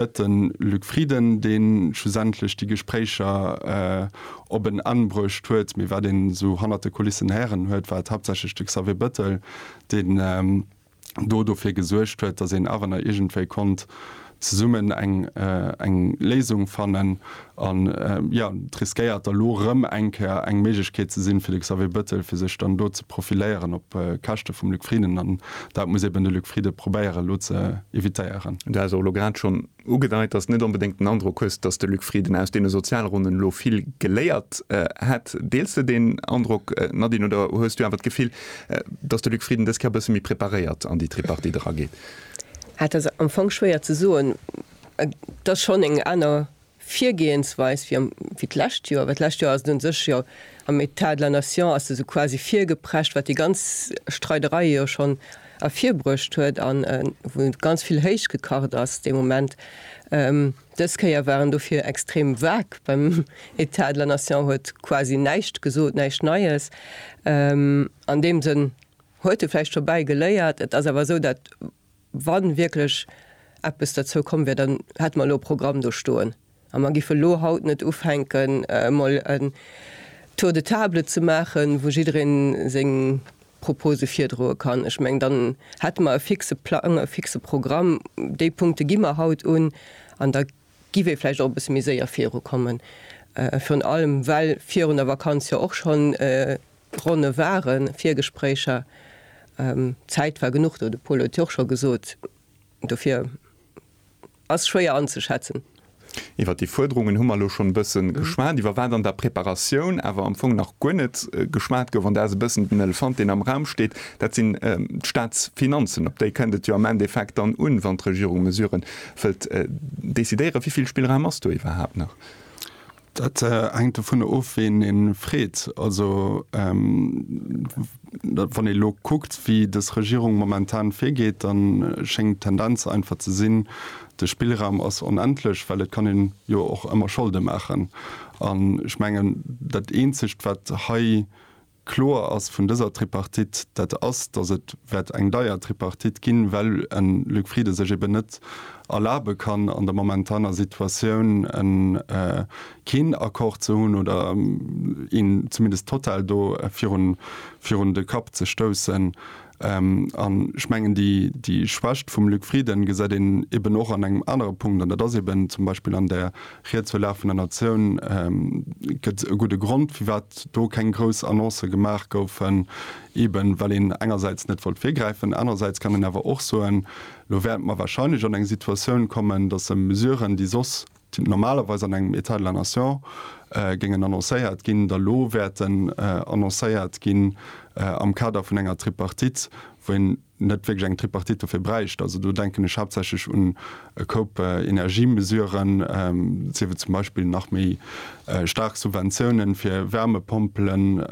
Et de Luc Frieden, dee schlussendlech déi Gespréicher op en Enn bruecht huet. Mee wat een esou hannert de Kulissen héieren huet, war et haaptsächlech de Xavier Bettel, deen do dofir gesuergt huet, datt een awer nach iergendwéi konnt zesummen eng Léisung fannen. An jo, et riskéiert da elo erëm eng Kéier eng Méiglechkeet ze sinn, fir de Xavier Bettel, fir sech dann do ze profiléieren op Käschte vum Luc Frieden. An dat muss eben de Luc Frieden probéieren, elo ze evitéieren. Du has och elo grad schonn ugedeit, dass net onbedéngt den Androck hues, dass de Luc Frieden aus deene Sozialronnen elo vill geléiert hätt. Deels de deen Androck, Nadine, oder hues du awer d'Gefill, dass de Luc Frieden dës Kéier e bësse méi preparéiert an déi Tripartite erageet? Dat ass am Fong schwéier ze soen. Et ass schonn eng aner Virgehensweis wéi am, wéi d'lescht Joer, well d'lescht Joer ass et un sech jo am État de la nation ass esou quasi virgeprescht, wat déi ganz Streiderei jo schonn ervirbruecht huet an wou ganz vill héich gekacht ass dee Moment. Dës Kéier war en dofir extrem vague beim État de la nation, huet quasi näischt gesot, näischt Neies. An deem Sënn huet e vläicht dobäi geléiert. Et ass awer esou, dat Wa wierklech eppes derzou komm wier, dann hätte mer elo e Programm do stoen a mer géife elo haut net ufänken, emol en Tour de table ze maachen, wou jidderee seng Propose virdroe kann. Ech mengen, dann hätte mer e fixe Plang, e fixe Programm, déi Punkte gi mer haut un an da Giff ee vläicht och e bësse méi séier viru kommen, virun allem well virun der Vakanz jo och schonn Ronne waren, Virgespréicher. Zäit war genuch do, de Pol huet jo och scho gesot, dofir ass schwéier anzeschätzen. Iwwert déi Fuerderungen hu mer elo schonn e bësse geschwat, iwwer wat an der Preparatioun awer am Fong nach guer net geschwat gouf, an dat ass e bëssen den Elefant deen am Raum steet, dat sinn d'Staatsfinanzen. Op déi kënnt et jo am Endeffekt dann un, wann d'Regierung Mesuren Wëllt decidéieren, wéi vill Spillraum ass do iwwerhaapt nach? Dat hänkt dovunner of, ween ee freet. Also wann ee elo kuckt, wéi dës Regierung momentan virgeet, da schéngt d'Tendenz einfach ze sinn, de Spillraum ass onendlech, well et kann een jo och ëmmer Scholde maachen. An ech mengen, dat Eenzegt, wat hei Kloer ass vun dëser Tripartite, dat ass, datt et wäert eng deier Tripartite ginn, well en Luc Frieden sech eben net erlabe kann, an der momentaner Situatioun en keen Accord ze hunn oder een zumindest total do virun de Kapp ze stoussen. An ech mengen, déi Schwächt vum Luc Frieden gesäit een eben och an engem anere Punkt, an dat ass eben zum Beispill an der Ried zur Lag vun der Natioun gëtt e gudde Grond, firwat do keng grouss Annoncë gemaach goufen, eben well een engersäits net wollt virgräifen. Anerersäits kann een awer och soen, Elo wäerte mer wahrscheinlech an eng Situatioun kommen, datt e Mesuren, déi soss déi normalerweis an engem État de la nation géingen annoncéiert ginn, da lo wäerten annoncéiert ginn am Kader vun enger Tripartite, wou een net wierklech eng Tripartite dofir bräicht. Also do denken ech haaptsächlech un e Koup Energiemesuren, siewe zum Beispill nach méi staark Subventiounen fir Wärmepompelen,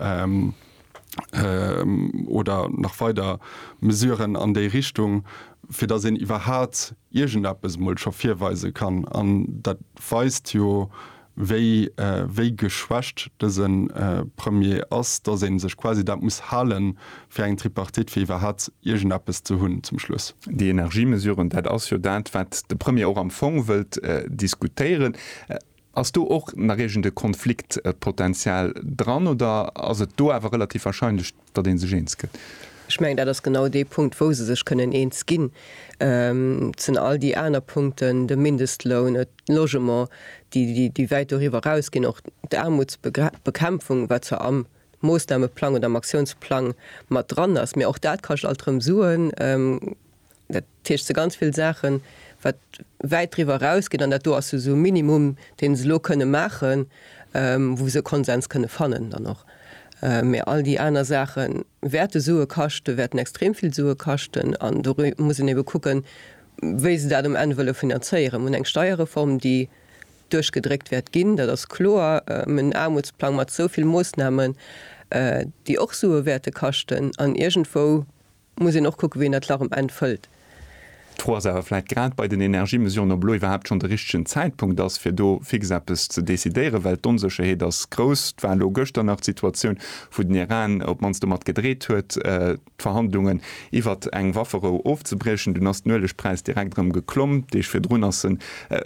oder nach weider Mesuren an déi Richtung, fir datt een iwwerhaapt iergendeppes emol scho virweise kann. An dat weist jo, wéi, wéi geschwächt dëse Premier ass, datt ee sech quasi dat muss hale fir eng Tripartite, fir iwwerhaapt iergendeppes ze hunn zum Schluss. Déi Energiemesuren, dat ass jo dat, wat de Premier och am Fong wëllt diskutéieren. Ass do och nach iergend e Konfliktpotential dran oder ass et do awer relativ wahrscheinlech, datt ee sech eens gëtt? Ech mengen, dat ass genau dee Punkt, wou se sech kënnen eens ginn. Et sinn all déi aner Punkten, de Mindestloun, d'Logement, déi wäit doriwwer erausginn, och d'Aarmutsbekämpfung, wat zwar am Moosnameplang oder am Aktiounsplang mat dran ass, mä och dat kascht alt erëm Suen. Dat heescht se ganz vill Saachen, wat wäit driwwer erausgeet, an dat do ass jo esou e Minimum, dee se elo kënne maachen, wou se e Konsens kënne fannen dann och. Mä all déi aner Saache wäerte Sue kaschten, wäerten extrem vill Sue kaschten an do muss een ebe kucken, wéi se dat um Enn wëlle finanzéieren. Mir hunn eng Steierreform, déi duerchgedréckt wäert ginn, dat ass kloer. Mir hunn en Aarmutsplang mat esou vill Moossnamen, déi och Sue wäerte kaschten an iergendwou, muss een och kucken, wéi een dat Lach um Enn fëllt. D'Fro ass awer vläit grad bei den Energiemesuren, ob elo iwwerhaapt schonn de richtegen Zäitpunkt ass, fir do fix eppes ze decidéieren, well d'Onsécherheet ass grouss. Et war elo gëschter nach d'Situatioun, wou den Iran op d'mannst domat gedreet huet, d'Verhandlungen iwwert eng Wafferou ofzebriechen. Dunn ass den Uelegpräis direkt erëm geklomm. Deeg virdrun ass en.